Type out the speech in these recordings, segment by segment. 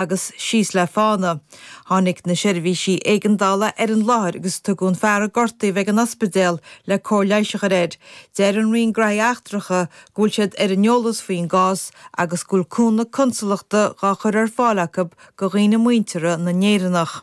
agus síos le fána. Tháinig na seirbhísí éigeandála ar an láthair agus tugadh an fear a gortaíodh ag an ospidéal le cóir leighis a chur air. Deir an Roinn Gnóthaí Eachtracha go bhfuil siad ar an eolas faoin gcás agus go bhfuil cúnamh consalachta dhá chur ar fáil acu go dhaoine muinteartha na nÉireannach.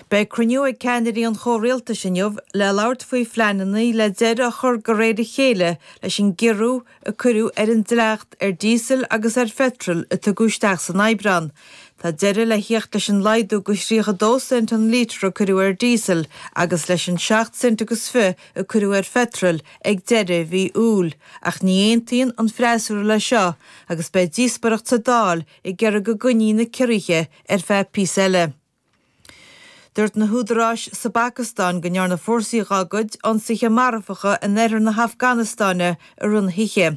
Beidh cruinniú ag ceannairí an chomhrialtais inniu le labhairt faoi phleananna le deireadh a chur de réir a chéile leis an gciorrú a cuireadh ar an dleacht ar díosal agus ar pheitreal a tugadh isteach san Aibreán. Tá deireadh le theacht leis an laghdú go thríocha dó cent an líotar a cuireadh ar díosal agus leis an seacht gcent agus fiche a cuireadh ar pheitreal ag deireadh mhí Iúil ach ní aontaíonn an freasúra leis seo agus beidh díospoireacht sa Dáil ag iarraidh go gcoinneofaí na ciorruithe Ar feadh píosa eile. Dúirt na húdaráis sa bPacastáin go ndearna fórsaí dhá gcuid ionsaithe marfacha in oirthear na hAfganastáine i rith na hoíche.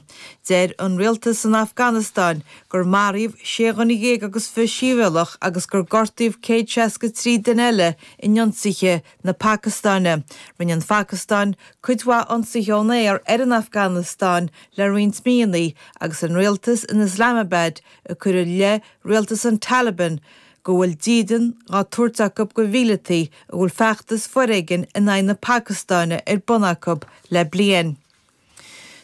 Deir an rialtas san Afganastáin gur maraíodh sé dhuine dhéag agus fiche sibhialtach agus gur gortaíodh céad seasca trí duine eile in ionsaithe na Pacastáine. Rinne an Phacastáin cuid mhaith ionsaithe ón aer ar an Afganastáin le roinnt míonna agus an rialtas in Islamabad ag cur i leith rialtas an Taliban go bhfuil dídean dhá thabhairt acu go mhíleataí a bhfuil feachtas foréigin in aghaidh na Pacastáine ar bun acu le bliain.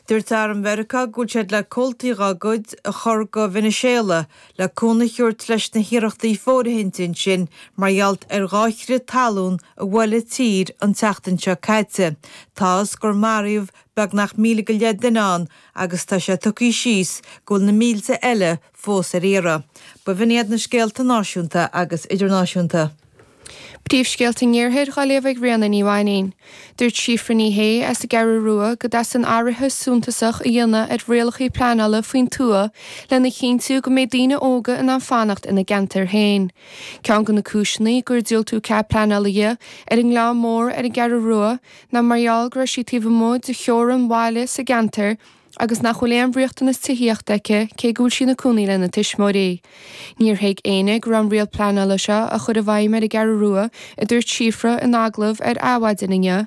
Dúirt arm Mheiriceá go bhfuil siad le comhaltaí dá gcuid a chur go Veiniséala le cúnamh a thabhairt leis na hiarrachtaí fóirithinte ansin mar gheall ar dhá chrith talún a bhuail an tír an tseachtain seo caite. Tá a fhios gur maraíodh beagnach míle go leith duine ann agus tá sé tugtha suas go bhfuil na mílte eile fós ar iarraidh. B'in iad na scéalta náisiúnta agus idirnáisiúnta. Príomhscéalta an Iarthair dhá léamh ag Ríona Ní Mháinín. Dúirt Síofra Ní Shé as an gCeathrú Rua go dteastaíonn athruithe suntasach a dhéanamh ar rialacha pleanála faoin tuath lena chinntiú go mbeidh daoine óga in ann fanacht ina gceantair féin. Ceann de na cúiseanna gur diúltú cead pleanála di ar an nGleann Mór ar an gCeathrú Rua ná mar gheall go raibh sí taobh amuigh de theorainn bhaile sa gceantar agus nach bhfuil aon riachtanas tithíochta aici cé go bhfuil sí ina cónaí lena tuismitheoirí. Níor thuig éinne go raibh an riail pleanála seo á chur i bhfeidhm ar an gCeathrú Rua, a dúirt Síofra in agallamh ar Adhmhaidin inniu.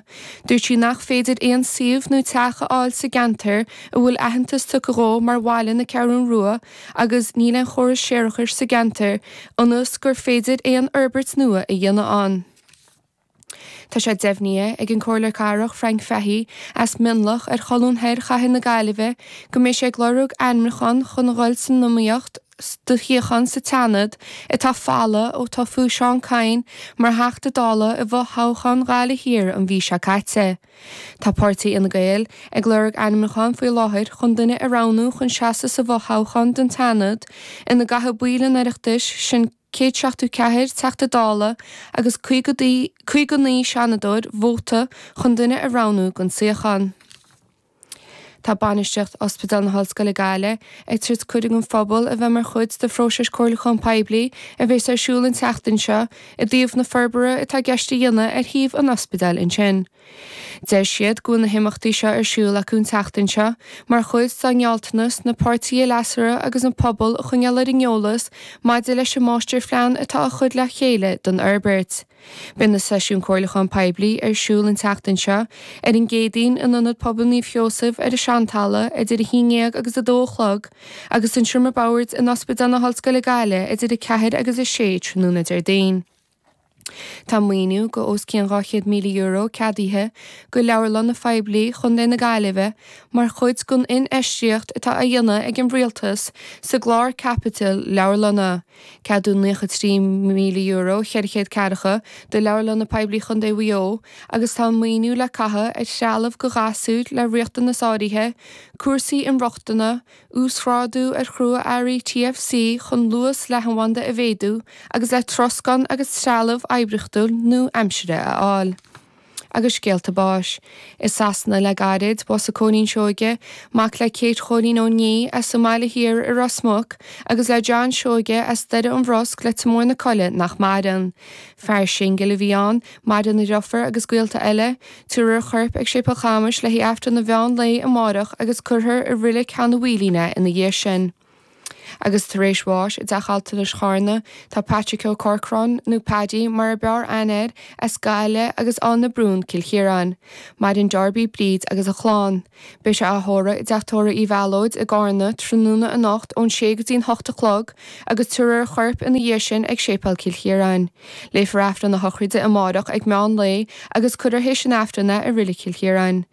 Dúirt sí nach féidir aon suíomh nó teach a fháil sa gceantar a bhfuil aitheantas tugtha dhó mar Bhaile na Ceathrún Rua agus níl aon chóras séarachais sa gceantar ionas gur féidir aon fhorbairt nua a dhéanamh ann. Tá sé deimhnithe ag an gComhairleoir Cathrach Frank Fahey, as Mionlach ar cholbha thoir chathair na Gaillimhe, go mbeidh sé ag lorg ainmniúchán chun a dhul san iomaíocht do shuíochán sa tSeanad atá folamh ó toghadh Seán Kyne mar Theachta Dála i bhfothoghchán Ghaillimh Thiar an mhí seo caite. Tá páirtí Fhine Gael ag lorg ainmniúchán faoi láthair chun duine a roghnú chun seasamh sa bhfothoghchán don tSeanad ina gcaithfidh baill an Oireachtais sin céad seachtó ceathair Teachta Dála agus caoga naoi Seanadóir vóta chun duine a roghnú don suíochán. Tá bainistiocht Ospidéal na hOllscoile Gaillimh ag tabhairt cuireadh don phobal a bheith mar chuid de phróiseas comhairliúchán poiblí a bhéas ar siúl an tseachtain seo i dtaobh na forbartha atá i gceist a dhéanamh ar shuíomh an ospidéil ansin. Deir siad go bhfuil na himeachtaí seo ar siúl acu an tseachtain seo mar chuid dá ngealltanas na páirtithe leasmhara agus an pobal a choinneáil ar an eolas maidir leis an máistirphlean atá á chur le chéile don fhorbairt. Beidh na seisiúin comhairliúcháin poiblí ar siúl an tseachtain seo, ar an gCéadaoin, in Ionad Pobail Naomh Seosamh ar an Seantalamh idir 11 agus 2 a chlog, agus i Seomra Mac an Bhaird in Ospidéal na hOllscoile Gaillimh idir 4 agus 6 tráthnóna Déardaoin. Tá maoiniú de os cionn €200,000 ceadaithe do Leabharlanna Phoiblí Chontae na Gaillimhe mar chuid den infheistíocht atá á dhéanamh ag an Rialtas sa gclár caipitil leabharlanna, ceadaíodh €93,000 400 ceathracha do Leabharlanna Poiblí Chontae Mhaigh Eo agus tá an maoiniú le caitheamh ar threalamh do ghasúir le riachtanais áirithe, cúrsaí inrochtana, uasghrádú ar chrua-earraí TFC chun luas leathanbhanda a mhéadú agus le troscán agus trealamh oibríochtúil nua-aimseartha a fháil. Agus scéalta báis. I Sasana le gairid, bhásaigh Cóilín Seoige, mac le Kate Chóilín Uí Niaidh as an mBaile Thiar i Ros Muc agus le John Seoige as Doire an Bhrosc, Leitir Mór na Coille nach maireann. Fear singil a bhí ann, maireann a dhriofúr agus gaolta eile, Tiúrfar a chorp ag Séipéal Chamais le h-Aifreann an mheán lae amáireach agus cuirfear i roilig Chinn Mhara é ina dhiaidh sin. Agus tar éis bháis i dTeach Altranais Chárna tá Patrick Ó Corcráin, nó Paddy mar a b'fhearr aithne air, as Gaillimh agus Eanach Bhrún, Cill Chiaráin, maireann a dheirfiúr Bríd agus a clann. Beidh sé á thórramh i dTeach Tórraimh Uí Mhéalóid i gCárna tráthnóna anocht ón sé go dtí'n hocht a chlog agus tabharfar a chorp ina dhiaidh sin ag Séipéal Chill Chiaráin. Léifear Aifreann na Sochraide amáireach ag meán lae agus cuirfear théis an Aifrinn é i Reilig Chill Chiaráin.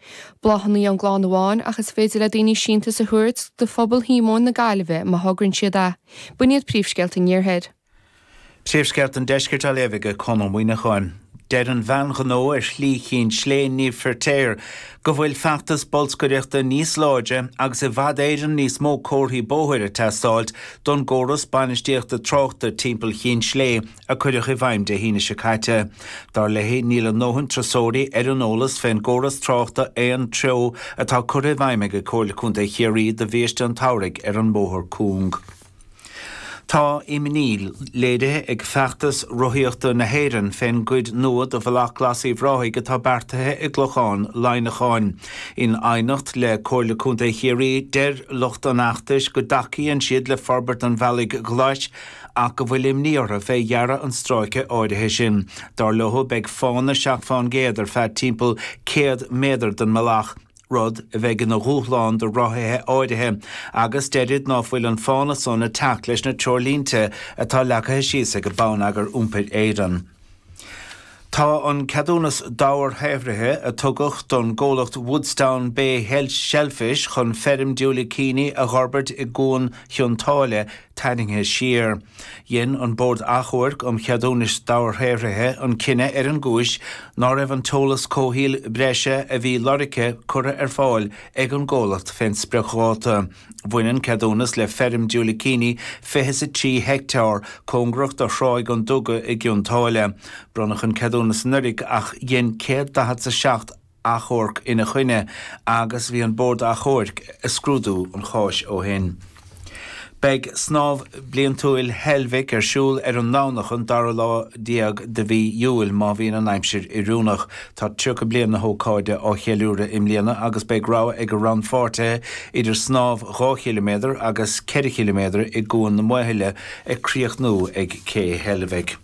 Bláthannaí ón gclann amháin ach is féidir le daoine síntiús a thabhairt do Phobal Shíomóin na Gaillimhe má thogrann siad é. B'in iad príomhscéalta an iarthair. Príomhscéalta an Deiscirt á léamh ag Conn Ó Muíneacháin. Deir an bhean ghnó ar Shlí Chinn Slé Niamh Firtéar go bhfuil feachtas bolscaireachta níos láidre agus i bhfad Éireann níos mó comharthaí bóthair ag teastáilt don gcóras bainistíochta tráchta timpeall Chinn Slé a cuireadh i bhfeidhm Dé hAoine seo caite. Dar léi níl a ndóthain turasóirí ar an eolas fén gcóras tráchta aon treo atá curtha i bhfeidhm ag Comhairle Contae Chiarraí do bhiaiste an tsamhraidh ar an mbóthar cúng. Tá imní léirithe ag Feachtas Rothaíochta na hÉireann fén gcuid nua de Bhealach Glas Uíbh Ráthaigh atá beartaithe i gClochán Laighneacháin. In aighneacht le Comhairle Contae Chiarraí, deir lucht an fheachtais go dtacaíonn siad le forbairt an bhealaigh ghlais ach go bhfuil imní orthu fé dhearadh an stráice áirithe sin. Dar leo, beidh fána seacht fán gcéad ar feadh timpeall 100 méadar den mbealach, rud a bheidh ina dhúshlán do rothaithe áirithe, agus deirid ná fuil an fána san ag teacht leis na treoirlínte atá leagtha síos ag Bonneagar Iompair Éireann. Tá an ceadúnas dobharshaothraithe a tugadh don gcomhlacht Woodstown Bay Shellfish chun feirm diúilicíní a dh'fhorbairt i gCuan Chionn tSáile, tarraingthe siar. Dhein an Bord Achomhairc um Cheadúnais Dobharshaothraithe an cinneadh ar an gcúis ná raibh an t-eolas comhshaoil breise a bhí lorgtha curtha ar fáil ag an gcomhlacht fén spriocdháta. Bhain an ceadúnas le feirm diúilicíní fiche is a trí heicteár, cóngarach do Thráigh an Duga i gCionn tSáile. Bronnadh an ceadúnas anuiridh ach dhein céad daichead 's a seacht. achomharc ina choinne agus bhí an Bord Achomhairc ag scrúdú an cháis ó shin. Beidh Snámh Bliantúil Heilbhic ar siúl ar an nDomhnach an dara lá déag de mhí Iúil má bhíonn an aimsir oiriúnach. Tá 30 bliain na hócáide á cheiliúradh i mbliana agus beidh rogha ag rannpháirtithe idir snámh dhá chiliméadar agus ceithre chiliméadar i gCuan na Maothaile ag críochnú ag Cé Heilbhic.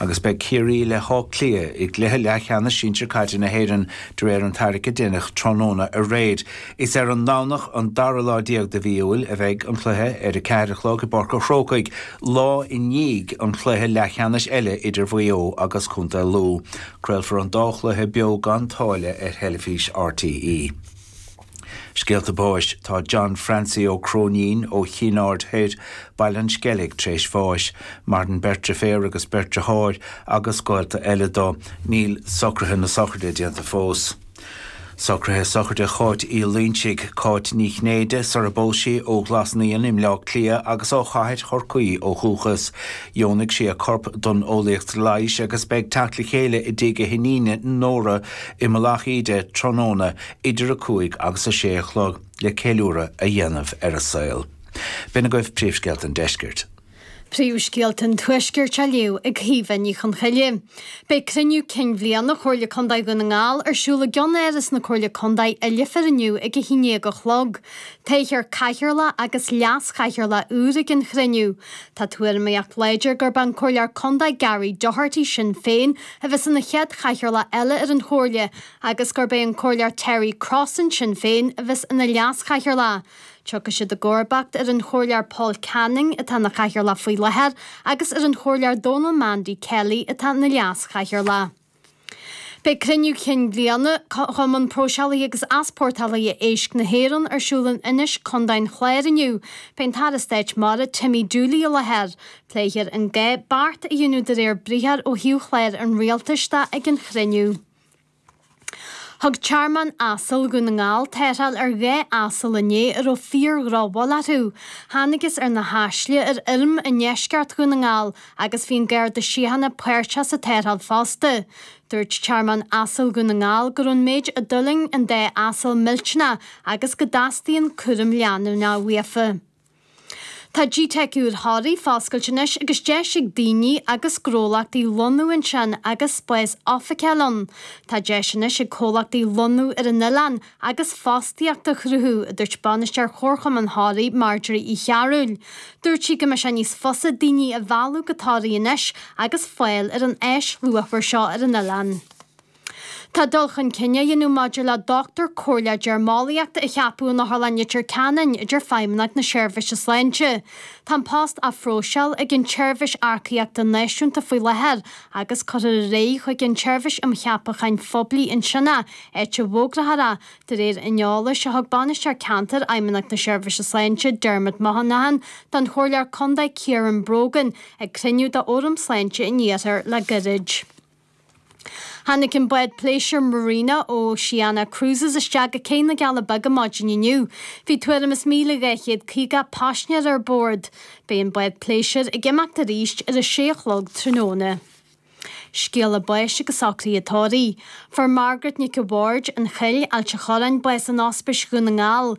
agus beidh Ciarraí le hÁth Cliath i gcluiche leathcheannais sinsir caide na hÉireann de réir an tarraicthe a deineadh tráthnóna aréir. Is ar an nDomhnach an dara lá déag de mhí Iúil a bheidh an cluiche, ar a ceathair a chlog i bPáirc an Chrócaigh, lá i ndiaidh an chluiche leathcheannais eile idir Mhaigh Eo agus contae Lú. Craolfar an dá chluiche beo gan táille ar theilifís RTÉ. Scéalta Báis Tá John Francie Ó Cróinín ó Chinn Aird Thoir, Baile an Sceilg, tar éis bháis. Maireann beirt dhriféar agus beirt dhriothár agus gaolta eile dó. Níl socruithe na sochraide déanta fós. Socruithe Sochraide Cháit Uí Loingsigh, Cáit Ní Chinnéide, sar a bpós sí, ó Ghlas Naíon i mBleá Cliath agus ó Chathair Chorcaí ó dhúchas. Dheonaigh sí a corp don Eolaíocht Leighis agus beidh teacht le chéile i dtigh a hiníne Nóra i Mullach Íde tráthnóna idir 5 agus 6 a chlog le ceiliúradh a dhéanamh ar a saol. B'in agaibh Príomhscéalta an Deiscirt. Príomhscéalta an Tuaiscirt á léamh ag Caoimhe Ní Chonchoille. Beidh Cruinniú Cinn Bhliana Chomhairle Contae Dhún na nGall ar siúl i gCeannáras na Comhairle Contae i Leifear inniu ag 11 a chlog. Toghfar Cathaoirleach agus Leas-Chathaoirleach úr ag an chruinniú. Tá tuairimíocht láidir gurb é an Comhairleoir Contae Gary Doherty, Sinn Féin, a bheas ina chéad Chathaoirleach eile ar an Chomhairle, agus gurb é an Comhairleoir Terry Crossan, Sinn Féin, a bheas ina Leas-Chathaoirleach. Tiocfaidh siad i gcomharbacht ar an Chomhairleoir Paul Canning, atá ina Chathaoirleach faoi láthair, agus ar an Chomhairleoir Donal Mandy Kelly, atá ina Leas-Chathaoirleach. Beidh Cruinniú Cinn Bhliana Chumann Próiseálaithe agus Easpórtálaithe Éisc na hÉireann ar siúl in Inis, Co. an Chláir inniu. Beidh an tAire Stáit Mara Timmy Dooley i láthair. Pléifear an gá beart a dhéanamh de réir briathar ó thaobh chláir an Rialtais de ag an chruinniú. Thug Tearmann Asail Dhún na nGall tarrtháil ar 2 asal inné a raibh fíor-dhrochbhail orthu. Thánagas ar na haisle ar fheirm i ndeisceart Dhún na nGall agus bhí an Garda Síochána páirteach sa tarrtháil fosta. Dúirt Tearmann Asail Dhún na nGall go raibh an méid a d'fhulaing an dá asal millteanach agus go dteastaíonn cúram leanúnach uafa. Tá GTeic úr Thoraí foscailte anois agus deis ag daoine agus gnólachtaí lonnú ansin agus spás oifige a fháil ann. Tá deis anois ag comhlachtaí lonnú ar an oileán agus fostaíocht a chruthú, a dúirt Bainisteoir Chomharchumann Thoraí, Marjorie Uí Chearbhaill. Dúirt sí go mbeidh sé níos fusa daoine a mhealladh go Toraigh anois agus fáil ar an áis luachmhar seo ar an oileán. Tá dul chun cinn á dhéanamh maidir le Dochtúir Comhairleach Deirmeolaíochta a cheapadh in Otharlann Leitir Ceanainn a deir Feidhmeannacht na Seirbhíse Sláinte. Tá an post á phróiseáil ag an tSeirbhís Earcaíochta Náisiúnta faoi láthair agus cuirfear ar aghaidh chuig an tSeirbhís um Cheapacháin Phoiblí ansin é, áit a bhfógrófar é, de réir an eolais a thug Bainisteoir Ceantair Fheidhmeannacht na Seirbhíse Sláinte, Dermot Monaghan, don Chomhairleoir Contae Ciaran Brogan ag cruinniú d'Fhóram Sláinte an Iarthair le goirid. Tháinig an bád pléisiúir Marina ó Oceania Cruises isteach go Cé na gCealla Beaga maidin inniu. Bhí tuairim is míle dhá chéad caoga paisnéir ar bord. Beidh an bád pléisiúir ag imeacht arís ar a sé a chlog tráthnóna. Scéala báis agus socruithe tórraidh. Fuair Margaret Nic a' Bhaird, an Chill, Ailt a' Chorráin, bás in Ospís Dhún na nGall,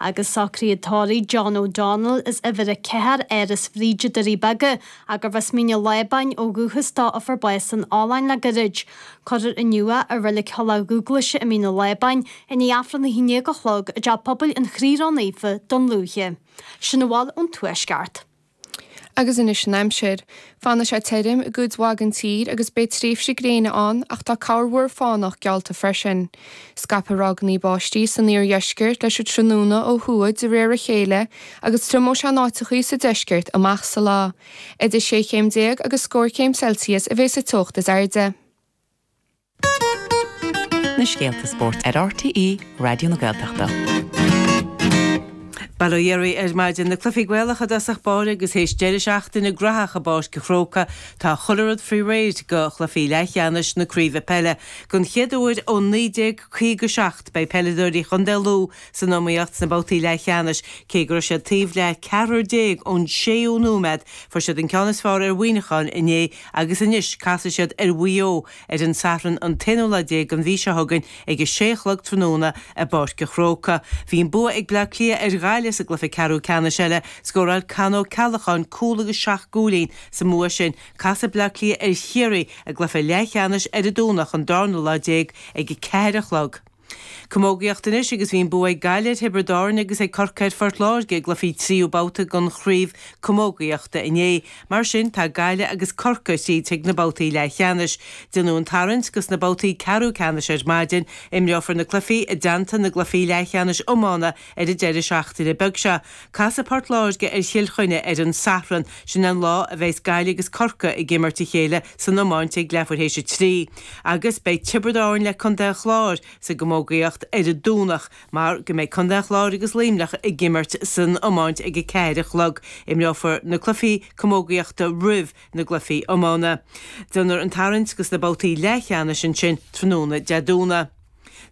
agus socruithe tórraidh John O'Donnell as uimhir a ceathair Áras Bhríde, Doirí Beaga, gurbh as Mín an Lábáin ó dhúchas dó a fuair bás san oileáin le goirid. Cuireadh inniu é i Reilig Thulach Dhúghlaise i Mín an Lábáin i ndiaidh Aifreann a haon-dhéag a chlog i dteach pobail an Chroí Ró-Naofa, Dún Lúiche. Sin a bhfuil ón Tuaisceart. Agus anois an aimsir. Fanfaidh sé tirim i gcuid mhaith den tír agus beidh tréimhsí gréine ann ach tá corrmhúr fánach geallta freisin. Scaipfidh ráigeanna báistí san iardheisceart leis an tráthnóna ó thuaidh de réir a chéile agus triomóidh sé in áiteachaí sa deisceart amach sa lá. Idir shé chéim déag agus scór céim Celsius a bheidh sa teocht is airde. Na scéalta spóirt ar RTÉ Raidió na Gaeltachta. Bail ó Dhia oraibh ar maidin, na cluichí Gaelacha i dtosach báire agus théis deireadh seachtaine graitheach i bPáirc an Chrócaigh, tá chuile rud faoi réir do chluichí leathcheannais na craoibhe peile. Don chéad uair ó 1957 beidh peileadóirí Chontae Lú san iomaíocht sna babhtaí leathcheannais. Cé go raibh siad taobh le 14 ón séú nóiméad, fuair siad an ceann is fearr ar Mhuineacháin inné agus anois casfaidh siad ar Mhaigh Eo ar an Satharn an t-aonú lá déag den mhí seo chugainn ag a sé a chlog tráthnóna i bPáirc a' Chrócaigh. Bhí an bua ag Bleá Cliath ar Ghaillimh sa gcluiche ceathrú ceannais eile. Scóráil Con Ó Ceallacháin cúl agus seacht gcúilín sa mbua sin. Casfaidh Bleá Cliath ar Chiarraí i gcluiche leathcheannais ar an Domhnach an darna lá déag ag a ceathair a chlog. Camógaíocht anois agus bhí an bua ag Gaillimh ar Thiobraid Árann agus ag Corcaigh ar Phort Láirge i gcluichí tríú babhta den chraobh camógaíochta inné. Mar sin tá Gaillimh agus Corcaigh thríd chuig na babhtaí leathcheannais. Déanadh an tarraingt go sna babhtaí ceathrú ceannais ar maidin. Imreofar na cluichí i dteannta na gcluichí leathcheannais iomána Ar an deireadh seachtaine beag seo, casfaidh Port Láirge ar Chill Chainnigh ar an Sathran, sin an lá a bheas Gaillimh agus Corcaigh ag imirt a chéile san iomáint ag leathuair théis a trí, agus beidh Tiobraid Árann le Contae an Chláir sa gcamógaíocht ar an Domhnach mar go mbeidh Contae an Chláir agus Luimneach ag imirt san iomáint ag a ceathair a chlog. Imreofar na cluifí camógaíochta roimh na gcluifí iomána. Déanfar an tarraingt go sna babhtaí leathcheannais ansin tráthnóna Dé Domhnaigh.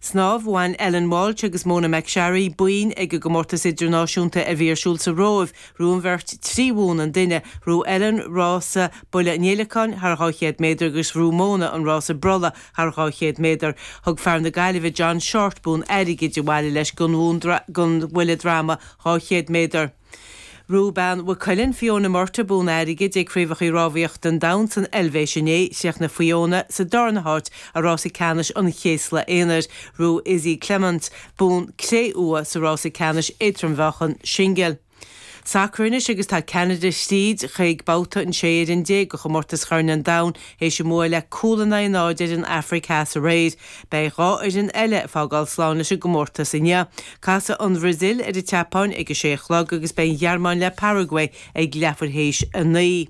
Snámh, Bhain Ellen Walshe agus Mona McSharry boinn ag an gcomórtas idirnáisiúnta a bhí ar siúl sa Róimh, ghnóthaigh an bheirt trí bhonn an duine, ghnóthaigh Ellen rása buille an fhéileacáin thar 200 méadar agus ghnóthaigh Mona an rása brolla thar 200 méadar. Thug fear na Gaillimhe John Shortt bonn airgid abhaile leis don bhuille droma 200 méadar. Ghnóthaigh bean Mhaigh Cuilinn, Fiona Murtagh, Bonn airgid ag Craobhacha Rámhaíochta an Domhain san Eilvéis inné, chríochnaigh Fiona sa darna háit i rása ceannais an chéasla aonair, ghnóthaigh Izzy Clements, bonn cré-umha sa rása ceannais éadrom-mheáchan singil. Sacar anois agus tá Ceanada thríd chuig babhta an 16 fhoireann de chomórtas Chorn an Domhain théis a mbua le cúl in aghaidh a náid ar an Afraic Theas aréir. Beidh dhá fhoireann eile ag fágáil slán leis an gcomórtas inniu. Casfaidh an Bhraisil ar an tSeapáin ag a sé a chlog agus beidh an Ghearmáin ag imirt le Paraguay ag leathuair théis a naoi.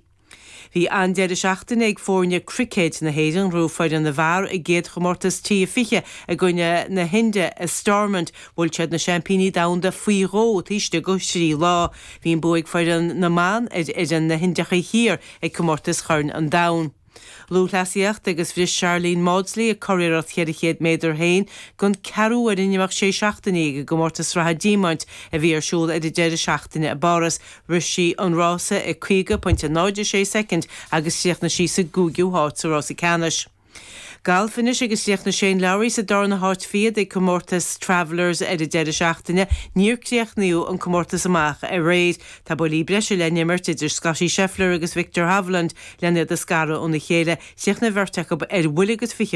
Bhí an-deireadh seachtaine ag foirne cruicéid na hÉireann. Bhuaigh foireann na bhfear an chéad chomórtas T20 i gcoinne na hInde i Stormont. Bhuail siad na seaimpíní domhanda faoi dhó taobh istigh de thrí lá. Bhí an bua ag foireann na mban ar fhoireann na hIndiacha Thiar ag comórtas Chorn an Domhain. Lúthchleasaíocht agus bhris Sharlene Mawdsley a curiarracht 400 méadar féin den 4ú uair in imeacht 6 seachtainí ag an gComórtas Sraithe Diamaint a bhí ar siúl ar an deireadh seachtaine i bPáras, rith sí an rása i 50.06 soicind agus chríochnaigh sí sa gcúigiú háit sa rása ceannais. Galf anois agus chríochnaigh Shane Lowry sa darna háit fichead ag Comórtas Travelers ar an deireadh seachtaine, níor críochnaíodh an comórtas amach aréir. Tá buillí breise le n-imirt idir Scottie Scheffler agus Viktor Hovland len iad a scaradh óna chéile, chríochnaigh an bheirt acu ar bhuille agus fiche